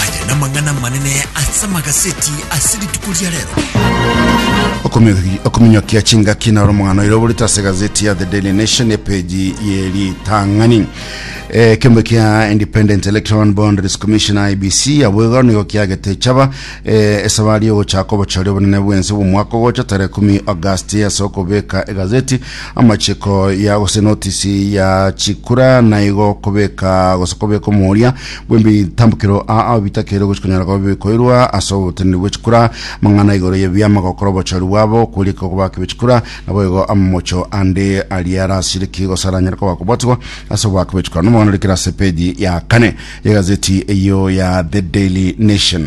Aya namang'ana amanene ase amagaseti ase rituko ria rero. okominyokia chingaki na romong'ano ire oborete ase gazeti ya the daily nation epeji ye ritang'ani Eh, kembe kia independent electoral boundaries commission ibc abwego nigo kiagete chaba eh, esabari yogochaka obochori obonene bwense bw'omwaka ogocha tare 10 august ase okobeka egazeti Amachiko ya gose notisi ya chikura naigo kobeka gose kobeka omoria bw'emitambukero aa bitakeirwe gochia konyara koba bikoirwa ase oboteneneri bwe chikura. Amang'ana igoro y'ebiama gokora obochori bwabo kwerika okobaka be chikura naboigo amamocho ande aria arasiriki gose aranyare koba kobwatigwa ase obobaka be chikura. Nomogweno rikire ase page ya kane y'egazeti eyio ya The Daily Nation.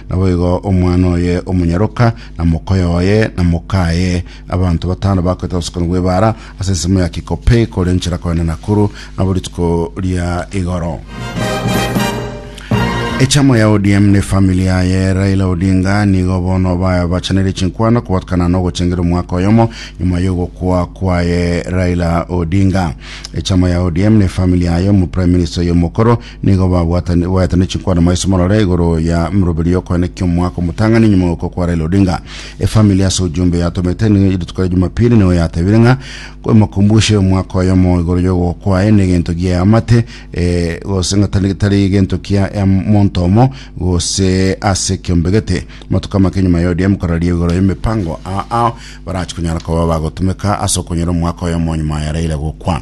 Naboigo omwana oye omonyaroka, na mokoyo oye, na mokaye, abanto batano bakoetera obosokoni bw'ebaara ase ensemo ya Kikopey kore nchera kogenda Nakuru nabo rituko ria igoro. Echama ya ODM ne family yaye Raila Odinga nigo bono babachanire chinkwano kobatukana nogochengera omwaka oyomo nyuma yogokwa kwaye Raila Odinga. Echama ya ODM ne family yaye omo Prime Minister oyo omokoro Nigo babwatani- baetane chinkwana maiso morore igoro ya mroberi yokoene kiomwaka omotang'ani nyuma gokwa kwa Raila Odinga. Efamili ase ojumbe yatomete nigo rituko ria Jumapili nigo yatebire ng'a emokumbushe omwaka oyomo igoro yogokwa kwaye negento gia eamate eh, gose ng'a tari tari egento kia emonto omo gose ase kiombegete. Matuko amake nyuma ya ODM koraria igoro y'emepango aa ao barachi konyara koba bagotumeka ase okonyora omwaka oyomo nyuma ya Raila gokwa.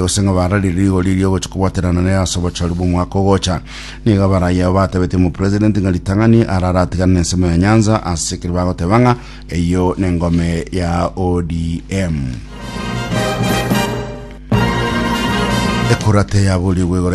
gose ng'a bararire rigori riogocha kobwaterana nere ase obochori bw'omwaka ogocha. Nigo abaraai abo batebetie omopresident ng'a ritang'ani arare atigane n'ensemo ya Nyanza, ase ekero bagoteba ng'a eyio nengome ya ODM. Ekura teyaborigwe igoro